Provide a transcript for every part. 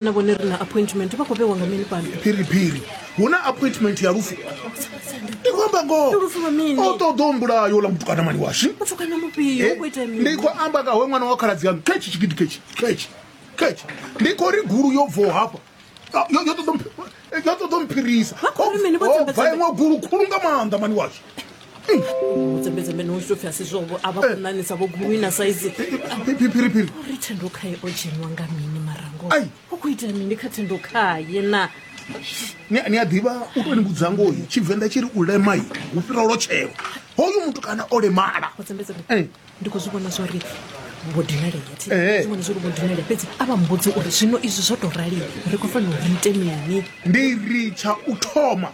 na vhone ri na appointment vha khou vhewa nga mini fhano phiriphiri hu na appointment ya lufu ndi khou amba ngoho o ṱoḓa u mbulayo ola mutukana mani washu eh, ndi khou amba kawe ṅwana wa khaladzi yanu khetshi tshigidi khetshi khetshi khetshi ndi khou ri gulu yo bvaho hafha yo ṱoḓa dzo ṱoḓa mphirisa bva iṅwe gulu khulu nga maanḓa mani washu mudzembedzembe no zwi pfi asi zwovo a vha eh. khonanisa vho guluina saizi phiriphiri uri thendo khaye o dzheniwa nga mini marango u khou itela mini kha thendo khaye na ni a ḓivha u tou ni vhudza ngoyi tshivenḓa tshi ri u lemai hu fhira lotshelo hoyu muthu kana o lemala ndi khou zwi vhona zwori vho dinalea Ee. vhona zwori vho dinalea fhedzi a vha mbudzi uri zwino izwi zwo tou rali ri khou fanela uri ite mini ndi ri tsha u thoma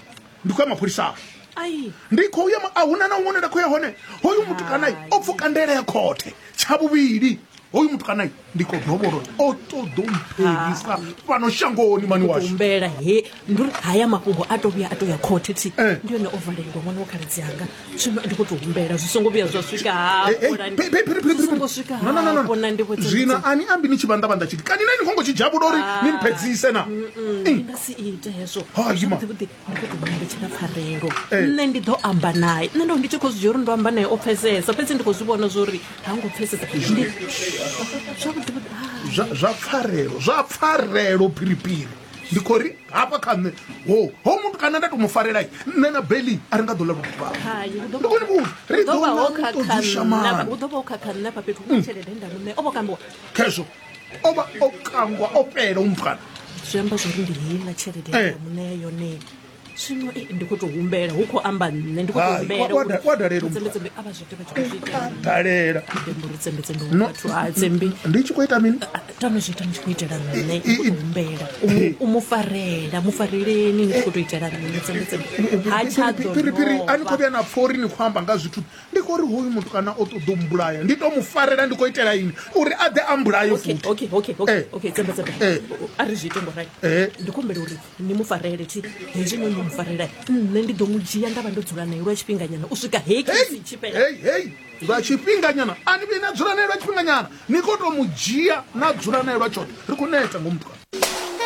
ndi khou ya mapholisani ai ndi khou ya ma- a huna na huṅwe nda khou ya hone hoyu mutukanayi o pfuka ndele ya khothe tsha vhuvhili hoyu mutukanayi ndi khou ḓo vhona uri o ṱoḓa u mphelisa fhano shangoni mani washu humbela he ndi uri haya mafhungo a to vhuya a to ya khothe thi Eh. ndi yone o valelwa ṅwana wa khaladzi anga zwino ndi khou tou humbela zwi songo vhuya zwa swika Eh, eh, hafho phi- phi- phi- phi- phi- songo swika No, no, no, no. hafho na ndivho dza- zwino dza- ani ambi ni tshi vhandavhanda tshiti kani na ni khongo tshi dzhavhula uri ni mphedzise na Mm, ndi nga si ite hezwo Ha, ima. Zwavhuḓi-vhuḓi, pfarelo nṋe ndi ḓo amba naye nṋe ndo ndi tshi khou zwi dzhia uri ndo amba naye o pfesesa fhedzi ndi khou zwi vhona zwo uri ha ngo pfesesa zwa pfarelo zwa pfarelo phiriphiri ndi khou ri hafha kha nṋe ho ho muthu kana nda to mu farela nṋe na beli a ri nga ḓo lavha vhukhakhezwo o vha o kangwa o fhela umfana zwi amba zwori ndi heiḽa tshelede ya muṋea yone zwino ndi khou to humbela hu khou amba nṋe ndi khou to humbelaavha zwote vha tshikhodalela ndi tshi khou ita mini tano zwi ita ndi tshi khou itela nṋe humbela u mu farela mu fareleni ndi khou to itela nṋe tsembetsembe ha tshadophiri a ni khou vhuya na pfha uri ni khou amba nga zwithu Ndi khou ri hoyu mutukana o ṱoḓa u mbulaya, ndi tou mu farela ndi khou itela ini uri a ḓe a mbulaye futhi. Okay, okay, okay, eh. okay, tsamba tsamba. Eh. A ri zwi ite ngo rai. Eh. Ndi khou humbela uri ni mu farele thi hezwi no mu farela. Nṋe ndi ḓo mu dzhia nda vha ndo dzula nae lwa tshifhinganyana u swika hei kisi tshi fhela. Hey, hey. Lwa tshifhinganyana a ni vhi na dzula nae lwa tshifhinganyana. Ni khou tou mu dzhia na dzula nae lwa tshoṱhe. Ri khou neta ngo mutukana.